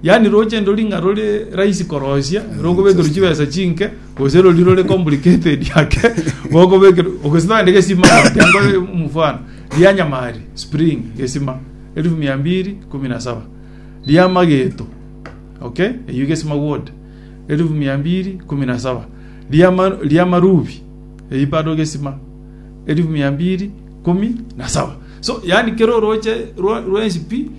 Yaani roche ndori ng'a rore rahisi koroisia, rokobekerwa chibesa chinke, gose rori rore complicated ake, gokobekerwa, ogesito naende gesima, tengo mfano, ria nyamari, spring, gesima, elfu mia mbiri kumi na saba, ria mageto, okay, eyio gesima wood, elfu mia mbiri kumi na saba, ria ma- ria marubi, eyio bado gesima, elfu mia mbiri kumi na saba. So, yaani kero oroche rwa- rwensi pi,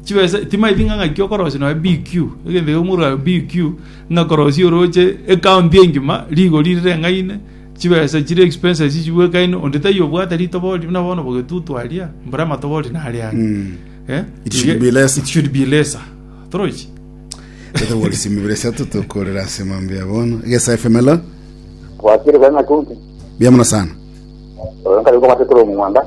chibesa timaibi ng'a ng'aki okorosia nonya BQ, egento ekero mwaruga BQ, ng'a korosia oroche ecounty engima rigori rireng'aine, chibesa chire expenses chibwekaine, onde taiyo obwate ritoba ori buna bono bogetutu aria, mbora amatoba ori nare aria. Mm. Eh? It should be lesser. It should be lesser. Torochi? Totogorisi mibere sato tokorera ase mambo ya bono. Gesa FM hello. Kwakire kwa ng'atunti. Bia mono sana. Oyo nkari kwa matete ro mumwanda.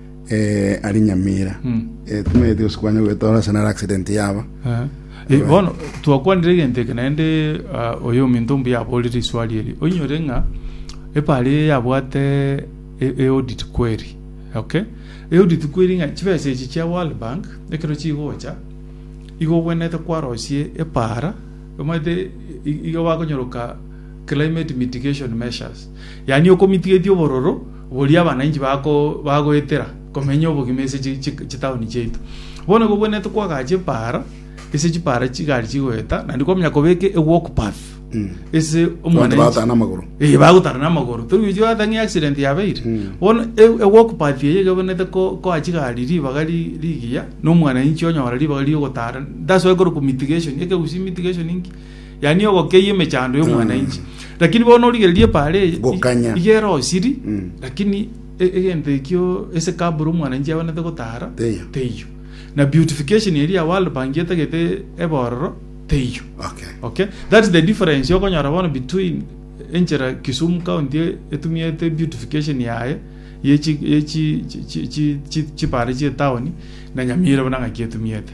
eh, ari nyamira Mm. eh, tumanyete gose kwanya gwetora ase naro accident yaba Eh, eh, bono twakwanire egento eke naende ah, oyo ominto mbuya aborire iswari eri oinyore ng'a epari eye yabwate e- eaudit query okay eaudit query ng'a chibesa echi chia world bank ekero chigocha igo ogwenerete kwarosie epara omanyete i- iga bakonyoroka climate mitigation measures yaani okomitigetie obororo Boria abananchi bagoetera komenya obogima ase chitaoni chiaito. Bono igo gwenerete kwagacha epaara ase chipaara chigari chigoeta, naende kwamanya kobeka ewalk path ase omwananchi. Bagotara namagoro. Ee bagotara namagoro. Tori gochia ata ng'a accident yabeire. Bono ewalk path eye iga gwenerete koa chigari ribaga rigiya, na omwananchi onyora ribaga rigotara. That's why korokwa mitigation, ekegusii mitigation inki? yaani ogokeyia emechando y'omwananchi lakini bono origereria epaara eye Gokanya. iga erosiri Mm. lakini e- egento ekio ase kabura omwananchi abwanete gotara Teiyo. teiyo na beautification eria ya world bank etagete ebororo teiyo Okay. okay that's the difference okonyora bono between enchera kisumu county e- etumiete beautification yaye yechi yechi chi- chi- chi- chi- chipare chie town na nyamira buna ng'aki etumiete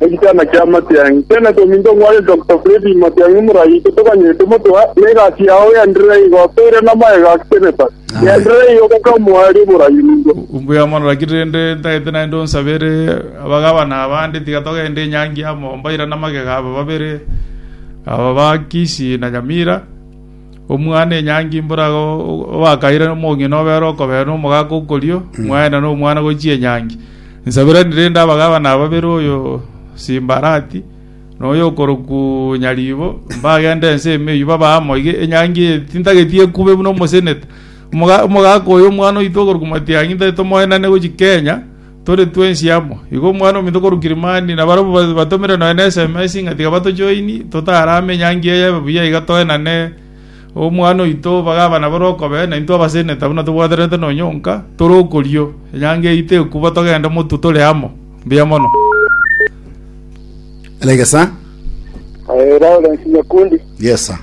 Egetanda kia amatiang'i tiana tominto ng'ware Doctor Freddy Matiang'i Murai totoganyete motoa ne egasi yao yaenderere igo toire namaega gaketeneta yaenderere igo mpaka omoerio borai nigo. Mbuya mono lakini rende ntagete naende onsabere abagabana abande tiga togende enyangi amo mbairane amagega aba babere aba ba Kisii na Nyamira. Omwana enyangi mboro agwo obakaire omong'ina obere okobere na omogaka okorio, mwaenda na omwana gochia enyangi. Nsabirani rende abagabana babere oyo Simbarati na oyo okorokwu Nyaribo mbagende ense ime eyio babe amo iga enyangi eye tintageti ekube buna omosenete. Omoga- Omogaka oyo omwana oito okorokwu Matiang'i ntari tomoenane gochia Kenya, Tore twensi amo. Igo omwana ominto korwa Kilimani na barabwo batomire nonya ne sms ng'a tiga batojoini, totarame enyangi eye ebe buya iga toenane omwana oito bagaba nabo rokobe, na intwe abaseneta buna tobwaterete nonya onka, tore okorio, enyangi eyio tekubwa togende motwe tore amo. Mbuya mono. Elenge sa. Eh, Lawrence Nyakundi, Yes, sir.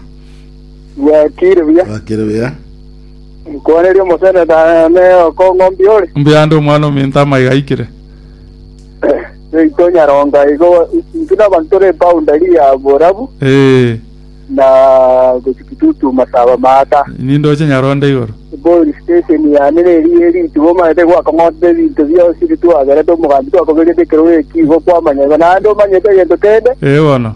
bwakire buya. Bakire buya. Nkwanerie omoseneta ne okong'ombia ore. Mbuya ande omwana ominto amaiga aikire. Seito Nyaronga igo intwe nabanto tore boundary ya borabu Ee, na gochia Kitutu Masaba Maata. nindoche Nyaronda igoro. Bori station yane neri eritu bomanete gwakong'otete ebinto bionsi ritwagerete omogambi twakobegete ekero eki igo kwamanya igo naende omanyete egento kende. Ee bono.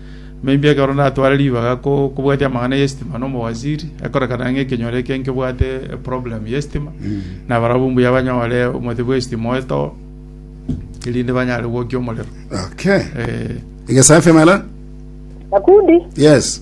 Mbaibia ekero ndatware ribaga kobwatia amang'ana y'estima na omowaziri, ekorekana ng'a ekenyoro eke nkebwate eproblem y'estima, na barabwo mbuya banyore omote bw'estima oetoo, erinde banyare gwokia omorero. Okay. Eh, Igesafi amela? Daudi Yes.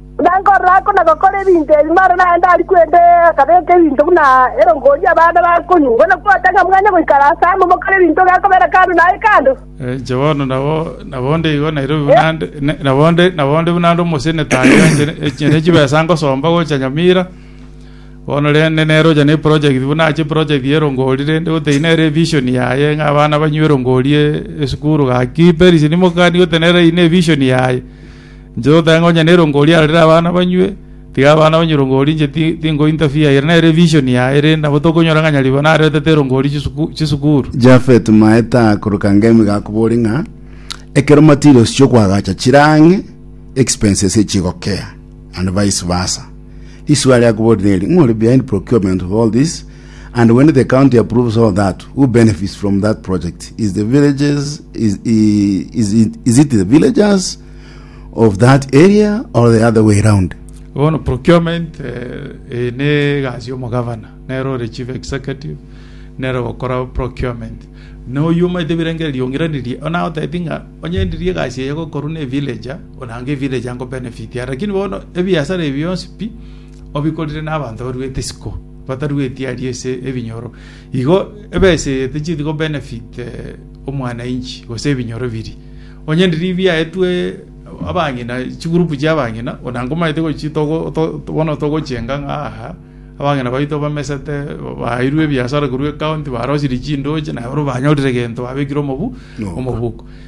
Buna nkorora oko na gokora ebinto ebi, mara naye ndari kwenda akabeka ebinto buna erongoria abana bakonywa. Bono kwata ng'a mwanye goikara aase amo mokore ebinto gekobera kando naye kando. Inche bono nabo onde igo Nairobi buna ande, nabo onde buna ande omoseneta aye, inche ne chibesa ngosomba gocha Nyamira, bono rende nere ocha ne eprojegti buna ache eprojegti ya erongori, rende gotebia nere evision yaye ng'a abana banywe erongori esukuru gaki, Peris, nimokani gotenena eyio ne evision yaye. Inche totae ngonya nerongo riarorire abana banywe, tiga abana banywe erongori inche ti- tinkointa fee. Ere nere evision yaye, erende nabo tokonyora ng'a nyaribero naretete erongori chisuku- chisukuru. Jafet maete aakoroka ngemi iga akobori ng'a ekero materials chi'okoagacha chire ang'e expenses echigokea and vice versa. Risuo aria akobori neri, ng'o ore behind procurement of all this? And when the county approves all that, who benefits from that project? Is the villages is i- is it, is it the villagers of that area or the other way round? bono procurement eh, eh, ne egasi omogavana nero ore chief executive nero ogokora procurement noyo omaete ebirengererio riong'iranirie ona oteti ng'a onye ndiri egasi eye gokorwa ne villager onange villager nko benefit are lakini bono ebiasara ebi bionsi pi obikorire n'abanto baruete isiko, batarueti aria ase ebinyoro, igo ebaisegete chithi go benefit omwanainchi gose ebinyoro biria. Onye riria biaetwe abang'ina, chigroup chi'abang'ina, ona nkomanyete gochi togo to bono togochenga ng'a aaha, abang'ina baito bamesete, baeirwe ebiasara korwa ecounty, barosirie chindoche, naye bono banyorire egento babekire omobu Noboka. omoboko.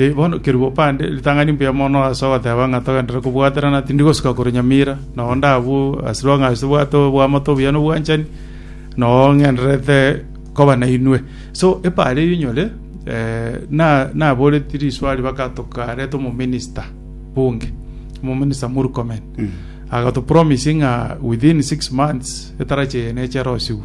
Ee, bono kerua opande ritang'ani mbuya mono ase ogoteba ng'a togenderere kobwaterana, tindi gosika korwa nyamira, na onde abwo ase rwang'a ase tobwate oboamate obuya na obwanchani, na oo ng'endererete koba nainwe. So, epa aria rinyore, eh, na- naboreti riswari baka tokareta omominista bunge, omominista Murkomen. Agatopromise ng'a within six months, etarachi eye neche erosigwe.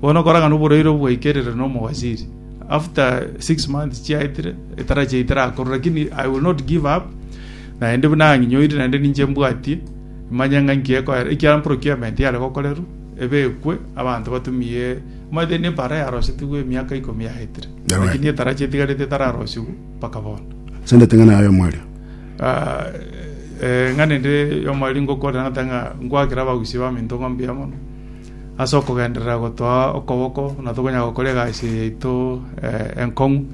Bono korang'ana oboraire obwaikerire nomowaziri after six months chiaetire etara chiaye terakorwa lakini I will not give up naende buna ang'inyoire naende ninche mbwatie manya ng'a nki ekoera ekiagera procurement yare gokorerwa ebekwe abanto batumie omanyete ne ebara yarosetigwe emiaka ikomi yaetire Yabae. lakini etara chietigarete etararosigwe mpaka bono Sendete ng'ana yayo mwaria. Ah, eh, ng'a nende yomweri ngokorera ng'ata ng'a nkwakera abagusi bamento ng'a mbuya mono Ase okogenderera gotoa okoboko buna tokonyara gokora egasi eye yaito enkong'u,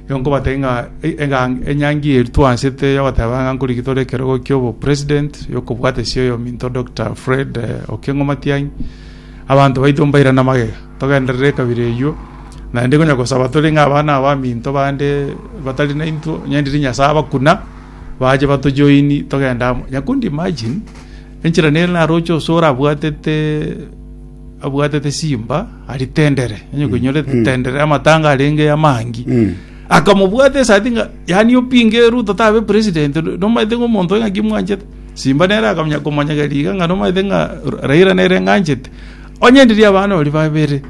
igo nkobatebia ng'a eng'ang enyangi eye twaanchete yogoteba ng'a nkorigia tore ekerogo ki'obopresident yokobwatesia oyominto Doctor Fred Okengo Matiang'i, abanto baito mbairane amagega togenderere ekabira eywo, naende konya gosaba tore ng'a abana abaminto bande batari naintwe onye ndiri Nyasae abakuna, bache bato join togende amo. Onye could imagine. Enchera nere naroche onsi orabwatete abwatete simba aritendere, onye koinyore tendere amatanga arenge amangi. Akamobwata esati ng'a yani opinge Ruto tabe president, nomaete ng'a omonto oyo ng'aki mwanchete. Simba nere akamanya komonyegeria iga ng'a nomaete ng'a Ra- Raila nere ng'anchete. Onye ndiria abana ori babere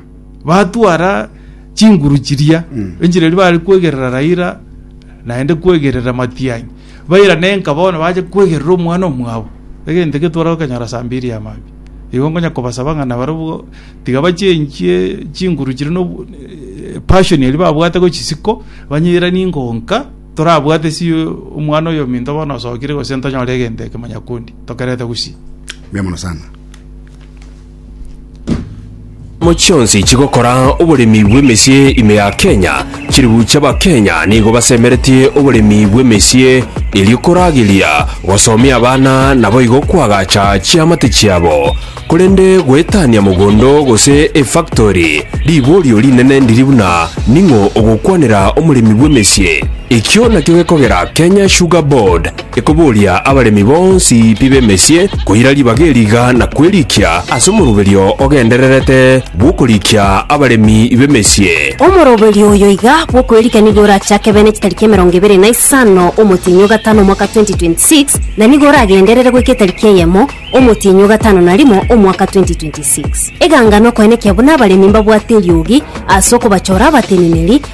batwara chinguru chiria, enchera eria bare kwegerera Raila naende kwegerera Matiang'i. Bairane enka bono bache kwegerera omwana omwabo, egento ekio twara gokanyora saa mbiri ya maambia. Igo nkonya kobasaba ng'a nabarobwo tiga bachie enchie chinguru chiria na obo- eh, passion eria babwate gochia isiko, banyeranie ng'a onka torabwate ase omwana oyo ominto bono osokire gose ntonyore egento eke manya kundi tokerete gusii. Mbuya mono sana. Chiamo chionsi chigokora oboremi bw'emesie ime ya Kenya chiribuche abakenya nigo basemeretie oboremi bw'emesie erio korageria gosomia abana naboigo kwagacha chiamate chiabo korende goetania mogondo gose efactori riborio rinene ndiri buna ning'o ogokwanera omoremi bw'emesie ekio nakio gekogera Kenya Sugar Board Ekoboria abaremi bonsi pi b'emesie koira ribaga eri iga na kwerikia ase omoroberio ogendererete bw'okorikia abaremi b'emesie. Omoroberio oyo iga bw'okwerikia nigo orachake bene chitariki emerongo ebere na isano omotienyi o gatano omwaka 2026 na nigo oragenderere goika etariki eyemo omotienyi o gatano na rimo omwaka 2026. Eganga nokoenekia buna abaremi mbabwate eriogi ase okobachora abateneneri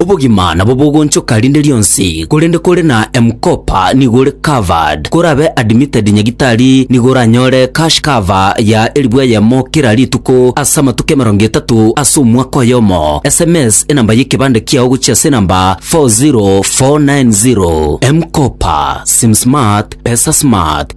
Obogima nabo bogonchoka rinde rionsi, korende kore na M-Kopa nigo ore covered. Korabe admitted nyagitari nigo oranyore cash cover ya elfu eyemo kera rituko ase amatuko emerongo etato ase omwaka oyomo. Sms enamba y'ekebande kiao gochia ase enamba 40490. M-Kopa, Sim Smart, Pesa Smart.